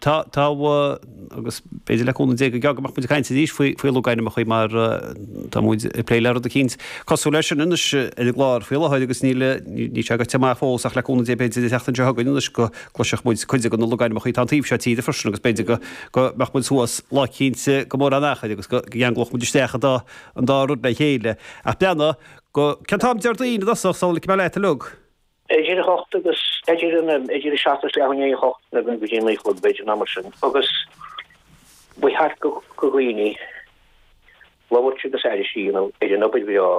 Tá, tá, agus b'fhéidir le cúnamh Dé go gearr go mbeadh muid ag caint arís faoi, faoi logainmneacha mar tá muid ag plé le rud eicínt cosúil leis sin anois ar an gclár faoi láthair agus níl, níl sé goite amach fós ach le cúnamh Dé b'fhéidir an tseachtain seo chugainn anois go gcloisfeadh muid cuid de na logainmneacha atá an taobh seo tíre freisin agus b'fhéidir go, go mbeadh muid suas lá eicínt go mór an achair agus go gceanglódh muid isteach an dá, an dá rud le chéile. Ach beannai go, cén t-am Déardaoin i dtosach, sula ligfidh mé leat a Liúc? Idir 8 agus idir an idir 7 is leath i ndiaidh 8 nó go dtí 9 a chlog b'fhéidir nó mar sin agus ba cheart go go dhaoine labhairt agus arís í nó idir an obair bhreá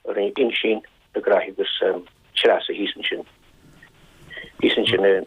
a rinne Uinsíonn Mac Graith agus Treasa thíos ansin thíos ansin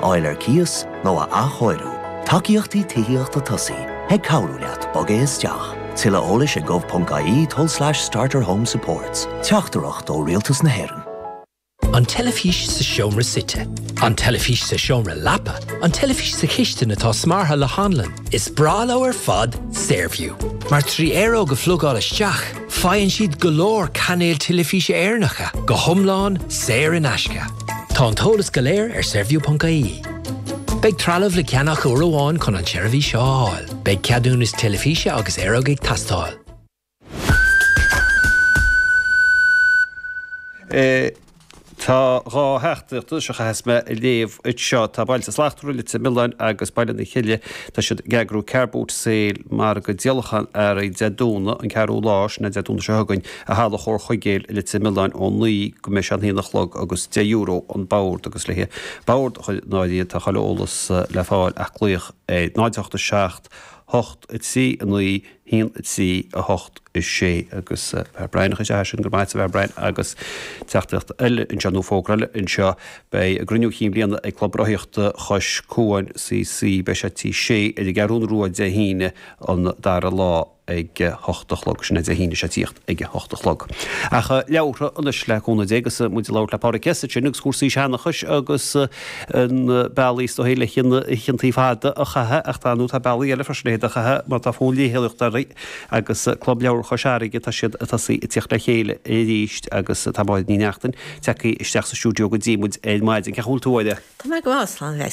fháil ar cíos nó a athchóiriú. Tacaíochtaí Tithíochta Tosaigh ag cabhrú leat bogadh isteach. Tuilleadh eolais ag gov.ie tulslais starterhomesupports. Teachtaireacht ó Rialtas na hÉireann. An teilifís sa seomra suite. An teilifís sa seomra leapa. An teilifís sa chistin atá smeartha le hanlann. Is breá leo ar fad Saorview, mar trí aeróg a phlugáil isteach, Faigheann siad go leor cainéil teilifíse Éireannacha go hiomlán saor in aisce. Tá an t-eolas go léir ar saorview ponc ie. Beidh trealamh le ceannach uair amháin chun an tseirbhís seo a fháil. Beidh ceadúnas teilifíse agus aeróg ag teastáil. Tá dhá theachtaireacht anseo a chaithfeas mé a léamh anseo. Tá Bailte Slachtmhara Leitir Mealláin agus Baile na Cille, tá siad ag eagrú Car Boot Sale, margadh díolacháin earraí Dé Domhnaigh, an ceathrú lá, sin é Dé Domhnaigh seo chugainn, i Halla Chomhar Chuigéal i Leitir Mealláin ó naoi go mbeidh sé a haon a chlog agus €10 an bord agus le haghaidh bord a chur in áirithe, tá chuile eolas le fáil ach glaoch ar 0 8 7 8 3 9 1, 3, 8, 6, agus Fear Brian, a chaith isteach é sin, go raibh maith agat Fear Brian, agus teachtaireacht eile anseo, nó fógra eile anseo, beidh a gCruinniú Cinn Bhliana ag Club Rothaíochta Chois Cuain CC, beidh sé Tí Sé, ar an gCeathrún Rua Dé hAoine an 2ú lá ag a hocht a chlog, sin é Dé hAoine seo ag tíocht ag a hocht a chlog. Ach leabhartha anois le cúnamh Dé agus muid ag labhairt le Pádraig S. ansin agus cúrsaí seanachais agus. na bealaí is dóichí le hoícheantaí fada a chaitheamh ach tá nó tá bealaí eile freisin le hiad a chaitheamh má tá fonn léitheoireachta orainn agus Club Leabhar Chois Fharraige tá siad ag tosaí ag tíocht le chéile arís agus tá Máirín Ní Neachtain tagtha isteach sa stiúideo go dtí muid ar maidin. Cén chaoi a bhfuil tú a Mháirín? Tá mé ag vacsaíl anois.